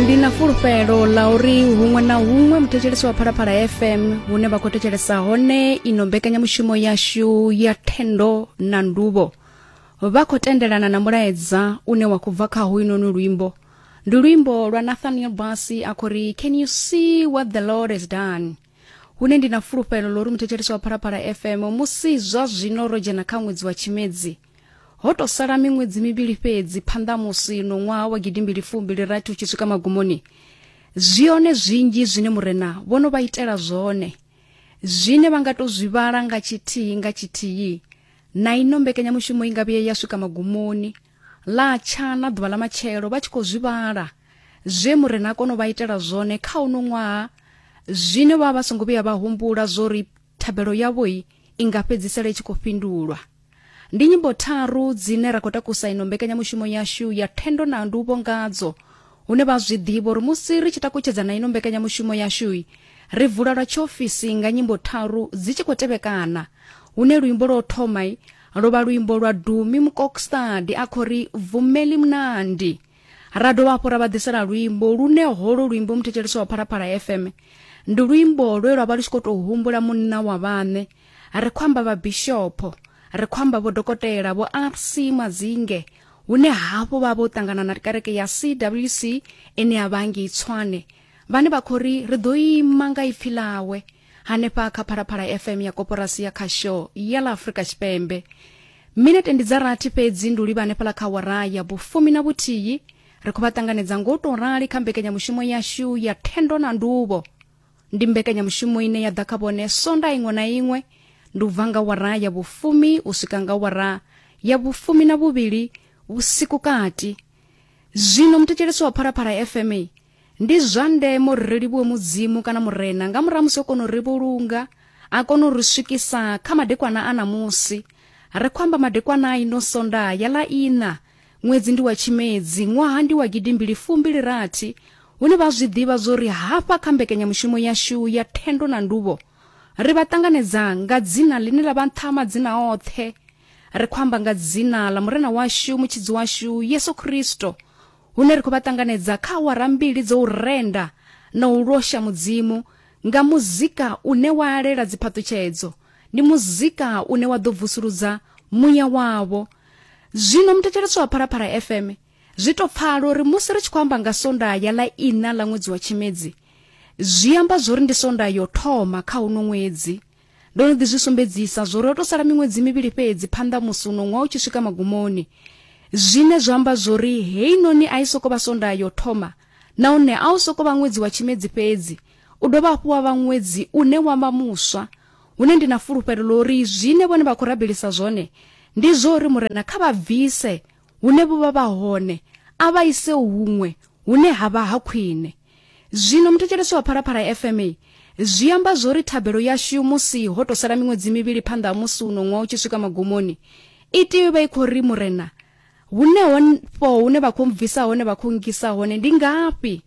ndi na fulufhelo ḽa uri huṅwe na huṅwe muthetshelesi wa phalaphala fm hune vha khou thetshelesa hone ino mbekanyamushumo yashu ya thendo na nduvho vha khou tendelana na mulaedza une wa khou bva kha hoyunoni luimbo ndi luimbo lwa nathaniel basi a khou ri can you see what the lord has done hune ndi na fulufhelo ḽo uri muthetshelesi wa phalaphala fm musi zwa zwino ro dzhena kha ṅwedzi wa tshimedzi ho tou sala miṅwedzi mivhili fhedzi phanḓa ha musi no ṅwaha wa gidimbili fumbili rathi u tshi swika magumoni zwi hone zwinzhi zwine murena vho no vha itela zwone zwine vha nga tou zwi vhala nga tshithihi nga tshithihi na ino mbekanyamushumo i nga vhuye ya swika magumoni ḽa tsha na ḓuvha ḽa matshelo vha tshi khou zwi vhala zwe murena a kona u vha itela zwone kha uno ṅwaha zwine vha vha songo vhuya vha humbula zwo ri thabelo yavho i nga fhedzisela i tshi khou fhindulwa ndi nyimbo tharu dzine ra khou takusa ino mbekanyamushumo yashu ya thendo na nduvho ngadzo hune vha zwi ḓivha uri musi ri tshi takutshedza na ino mbekanyamushumo yashu ri vula lwa tshiofisi nga nyimbo tharu dzi tshi khou tevhekana hune luimbo lwo thoma lwo vha luimbo lwa dumi mukokstadi a khou ri vumeli mnandi ra dovha hafhu ra vha ḓisela luimbo lune holo luimbo muthetshelesi wa phalaphala fm ndi luimbo lwe lwa vha lu tshi khou tou humbula munna wa vhaṋe ri khou amba vhabishopho ri khou amba vhodokotela vho rc madzinge hune hafhu vha vho ṱangana na kereke ya cwc ine ya vha ngei tswane vhane vha khou ri ri ḓo ima nga ipfi ḽawe hanefha kha phalaphala fm ya koporasi ya khasho ya ḽa afurika tshipembe minete ndi dza rathi fhedzi ndi u livha hanefhala kha wara ya vhufumi na vhuthihi ri khou vha ṱanganedza ngo tou rali kha mbekanyamushumo yashu ya thendo na nduvho ndi mbekanyamushumo ine ya ḓa kha vhone sonda iṅwe na iṅwe ndi u bva nga wara ya vhufumi u swika nga wara ya vhufumi na vhuvhili vhusiku kati zwino muthetshelesi wa phalaphala fm Ndi zwa ndeme uri ri livhuwe Mudzimu kana Murena nga murahu musi o kona u ri vhulunga a kona u ri swikisa kha madekwana a ṋamusi. Ri khou amba madekwana a ino Sondaha ya ḽa iṋa, ṅwedzi ndi wa Tshimedzi, ṅwaha ndi wa gidimbili fumbili rathi, hune vha a zwi ḓivha zwo ri hafha kha mbekanyamushumo yashu ya Thendo na Nduvho ri vha ṱanganedza nga dzina ḽine ḽa vha nṱha ha madzina oṱhe. Ri khou amba nga dzina ḽa Murena washu, Mutshidzi washu, Yesu Kristo, hune ri khou vha ṱanganedza kha awara mbili dzo u renda na u losha Mudzimu nga muzika une wa alela dziphaṱutshedzo. Ndi muzika une wa ḓo vusuludza muya wavho. Zwino muthetshelesi wa Phalaphala FM zwi tou pfala uri musi ri tshi khou amba nga Sondaha ya ḽa iṋa ḽa ṅwedzi wa Tshimedzi, zwi amba zwori ndi Sondaha yo thoma kha uno ṅwedzi. Ndo no ḓi zwi sumbedzisa zwori ho to sala miṅwedzi mivhili fhedzi phanḓa musi uno ṅwaha u tshi swika magumoni zwine zwa amba zwori heinoni a i soko vha sonda yo thoma nahone a u soko vha ṅwedzi wa tshimedzi fhedzi u dovha hafhu wa vha ṅwedzi une wa vha muswa hune ndi na fulufhelo ḽo uri zwine vhone vha khou rabelisa zwone ndi zwo uri murena kha vha bvise hune vho vha vha hone a vha ise huṅwe hune ha vha ha khwine zwino muthetshelesi wa phalaphala fma zwi amba zwori thabelo yashu musi ho to sala miṅwedzi mivhili phanḓa ha musi uno ṅwaha u tshi swika magumoni i tea vha i khou ri murena hune honfho hune vha khou bvisa hone vha khou ngisa hone ndi ngafhi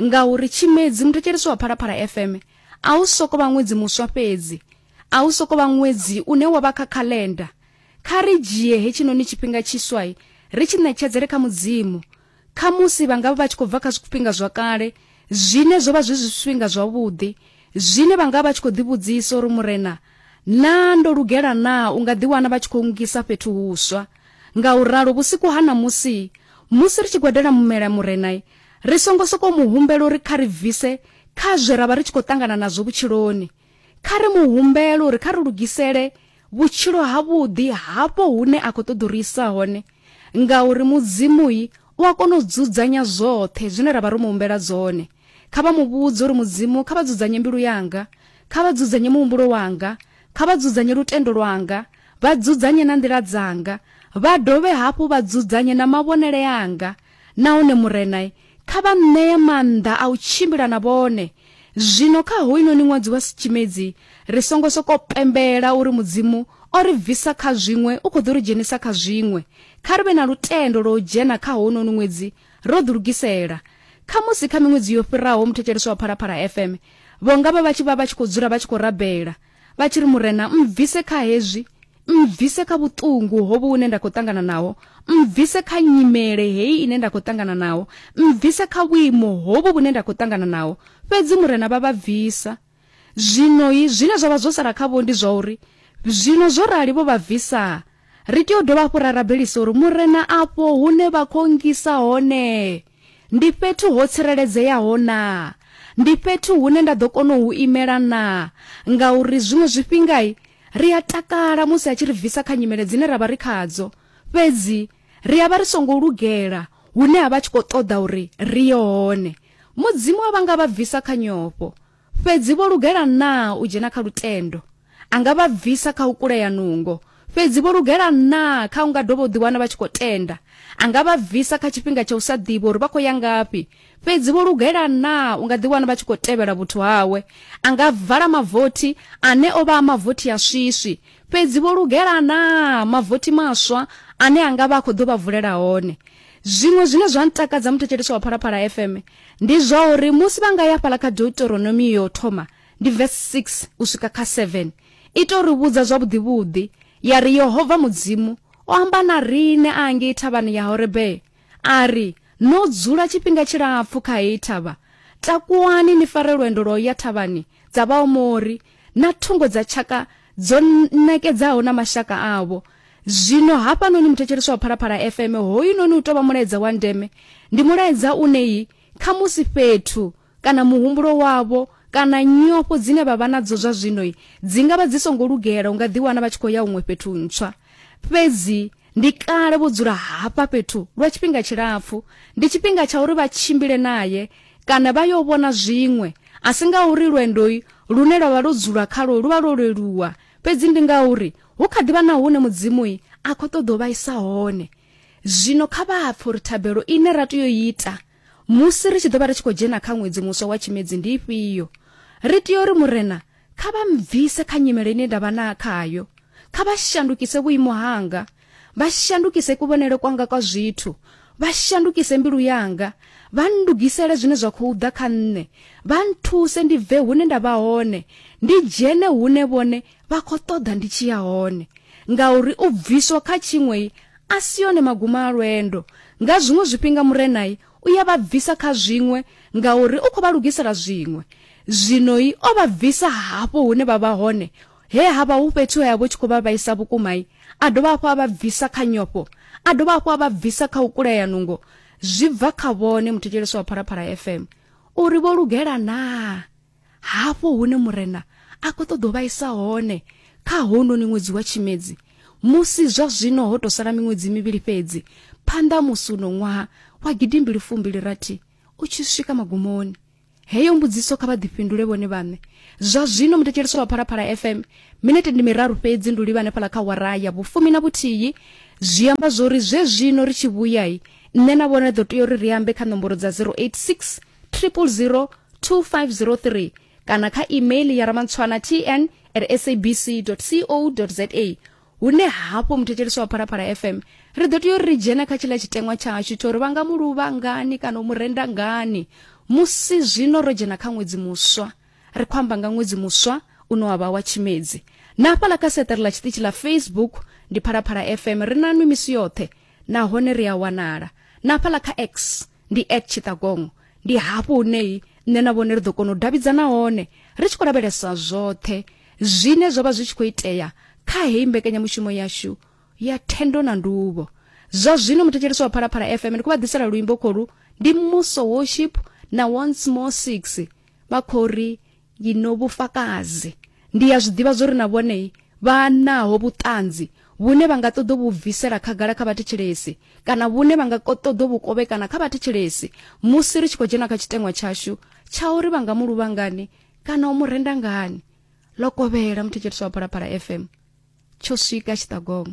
ngauri tshimedzi muthetshelesi wa phalaphala fm a u soko vha ṅwedzi muswa fhedzi a u soko vha ṅwedzi une wa vha kha calendar Kha ri dzhie hetshinoni tshifhinga tshiswai ri tshi ṋetshedzele kha Mudzimu. Khamusi vha nga vha vha tshi khou bva kha zwifhinga zwa kale zwine zwo vha zwi zwifhinga zwavhuḓi zwine vha nga vha tshi khou ḓivhudzisa uri, Murena, naa ndo lugela naa u nga ḓiwana vha tshi khou ngisa fhethu huswa? Ngauralo, vhusiku ha ṋamusi, musi ri tshi gwadela mumela Murena, ri songo sokou mu humbela uri kha ri bvise kha zwe ra vha ri tshi khou ṱangana nazwo vhutshiloni. Kha ri mu humbele uri kha ri lugisele vhutshilo havhuḓi hafho hune a khou ṱoḓa uri isa hone ngauri mudzimui u a kona u dzudzanya zwoṱhe zwine ra vha ro mu humbela dzone kha vha mu vhudze uri mudzimu kha vha dzudzanye mbilu yanga kha vha dzudzanye muhumbulo wanga kha vha dzudzanye lutendo lwanga vha dzudzanye na nḓila dzanga vha dovhe hafhu vha dzudzanye na mavhonele anga Nahone Murena, kha vha ṋee maanḓa a u tshimbila na vhone. Zwino kha hoyunoni ṅwadzi wa Tshimedzi, ri songo sokou pembela uri Mudzimu o ri bvisa kha zwiṅwe u khou ḓo ri dzhenisa kha zwiṅwe. Kha ri vhe na lutendo lwa u dzhena kha hounoni ṅwedzi ro ḓilugisela. Khamusi kha miṅwedzi yo fhiraho muthetshelesi wa Phalaphala FM vho nga vha vha tshi vha vha tshi khou dzula vha tshi khou rabela, vha tshi ri murena mbvise kha hezwi mbvise kha vhuṱungu hovhu hune nda khou ṱangana naho mbvise kha nyimele heyi ine nda khou ṱangana naho mbvise kha vhuimo hovhu vhune nda khou ṱangana naho fhedzi murena vha vha bvisa zwinoi zwine zwa vha zwo sala khavho ndi zwa uri zwino zwo rali vho vha bvisaa ri tea u dovha hafhu ra rabelisa uri murena afho hune vha khou ngisa hone Ndi fhethu ho tsireledzeaho naa? Ndi fhethu hune nda ḓo kona u imela naa? Ngauri zwiṅwe zwifhinga ri a takala musi a tshi ri bvisa kha nyimele dzine ra vha ri khadzo, fhedzi ri a vha ri songo lugela hune a vha a tshi khou ṱoḓa uri ri ye hone. Mudzimu a vha nga vha bvisa kha nyofho. Fhedzi vho lugela naa u dzhena kha lutendo? A nga vha bvisa kha u kulea nungo. Fhedzi vho lugela naa kha u nga dovha u ḓiwana vha tshi khou tenda? A nga vha bvisa kha tshifhinga tsha u sa ḓivha uri vha khou ya ngafhi. Fhedzi vho lugela naa u nga ḓiwana vha tshi khou tevhela vhuthu hawe? A nga vala mavothi ane o vha a mavothi a swiswi. Fhedzi vho lugela naa mavothi maswa ane a nga vha a khou ḓo vha vulela hone? Zwiṅwe zwine zwa ntakadza muthetshelesi wa Phalaphala FM ndi zwa uri musi vha nga ya fhala kha Deuteronomy yo thoma ndi verse 6 u swika kha 7 ita uri vhudza zwavhuḓivhuḓi ya ri Yehova Mudzimu o amba na riṋe a ngei thavhani ya Horebe a ri no dzula tshifhinga tshilapfu kha heyi thavha takuwani ni fare lwendo lwa u ya thavhani dza Vhaomori na thungo dza tshaka dzo ṋekedzaho na mashaka avho zwino hafhanoni muthetshelesi wa phalaphala fm hoyunoni u tou vha mulaedza wa ndeme ndi mulaedza une yi kha musi fhethu kana muhumbulo wavho kana nyofho dzine vha vha nadzo zwa zwino dzi nga vha dzi songo lugela u nga ḓiwana vha tshi khou ya huṅwe fhethu ntswa fhedzi ndi kale vho dzula hafha fhethu lwa tshifhinga tshilapfu ndi tshifhinga tsha uri vha tshimbile naye kana vha yo vhona zwiṅwe, a si ngauri lwendo lune lwa vha lwo dzulwa khalwo lu vha lwo leluwa, fhedzi ndi ngauri hu kha ḓi vha na hune Mudzimu a khou ṱoḓa u vha isa hone. Zwino kha vha pfe uri thabelo ine ra tea u ita musi ri tshi ḓo vha ri tshi khou dzhena kha ṅwedzi muswa wa Tshimedzi ndi ifhio. Ri tea uri Murena kha vha mbvise kha nyimele ine nda vha na khayo, kha vha shandukise vhuimo hanga, vha shandukise kuvhonele kwanga kwa zwithu vha shandukise mbilu yanga vha ndugisele zwine zwa khou ḓa kha nṋe vha nthuse ndi bve hune nda vha hone ndi dzhene hune vhone vha khou ṱoḓa ndi tshi ya hone ngauri u bviswa kha tshiṅwei a si yone maguma a lwendo nga zwiṅwe zwifhinga murenai u ya vha bvisa kha zwiṅwe ngauri u khou vha lugisela zwiṅwe zwinoi o vha bvisa hafho hune vha vha hone He ha vha hu fhethu he a vho tshi khou vha vhaisa vhukuma, a dovha hafhu a vha bvisa kha nyofho, a dovha hafhu a vha bvisa kha u kulea nungo. Zwi bva kha vhone muthetshelesi wa Phalaphala FM uri vho lugela naa hafho hune Murena a khou ṱoḓa u vhaisa hone kha hounoni ṅwedzi wa Tshimedzi, musi zwa zwino ho tou sala miṅwedzi mivhili fhedzi phanḓa ha musi uno ṅwaha wa gidimbili fumbili rathi u tshi swika magumoni. heyo mbudziso kha vha ḓifhindule vhone vhaṋe zwa zwino muthetshelesi wa phalaphala fm minete ndi miraru fhedzi ndi u livha hanefhala kha wara ya vhufumi na vhuthihi zwi amba zwo ri zwe zwino ri tshi vhuyai nṋe na vhone ḓo tea uri ri ambe kha nomboro dza 086 000 2503 kana kha email ya ramantshwana tn at sabc co za hune hafho muthetshelesi wa phalaphala fm ri ḓo tea uri ri dzhena kha tshiḽa tshiteṅwa tshashu tsho uri vha nga mu luvha ngani kana u mu renda ngani musi zwino ro dzhena kha ṅwedzi muswa ri khou amba nga ṅwedzi muswa une wa vha wa tshimedzi na hafhaḽa kha seṱere ḽa tshiṱitshi ḽa facebook ndi phalaphala fm ri na nwi misi yoṱhe nahone ri a wanala na hafhaḽa kha x ndi at tshiṱagongo ndi hafho huneyi nṋe na vhone ri ḓo kona u davhidzana hone ri tshi khou lavhelesa zwoṱhe Zwine zwa vha zwi tshi khou itea kha heyi mbekanyamushumo yashu ya thendo na nduvho. Zwa zwino muthetshelesi wa Phalaphala FM ndi khou vha ḓisela luimbo khoru ndi Muso Worship na Once More Six vha khou ri ngino vhufakazi. Ndi ya zwi ḓivha zwo ri na vhone vha naho vhuṱanzi vhune vha nga ṱoḓa vhu bvisela khagala kha vhathetshelesi kana vhune vha nga ṱoḓa vhu kovhekana kha vhathetshelesi musi ri tshi khou dzhena kha tshiteṅwa tshashu tsha uri vha nga mu luvha ngani kana u mu renda ngani ḽo kovhela muthetshelisi wa phalaphala fm tsho swika tshiṱagongo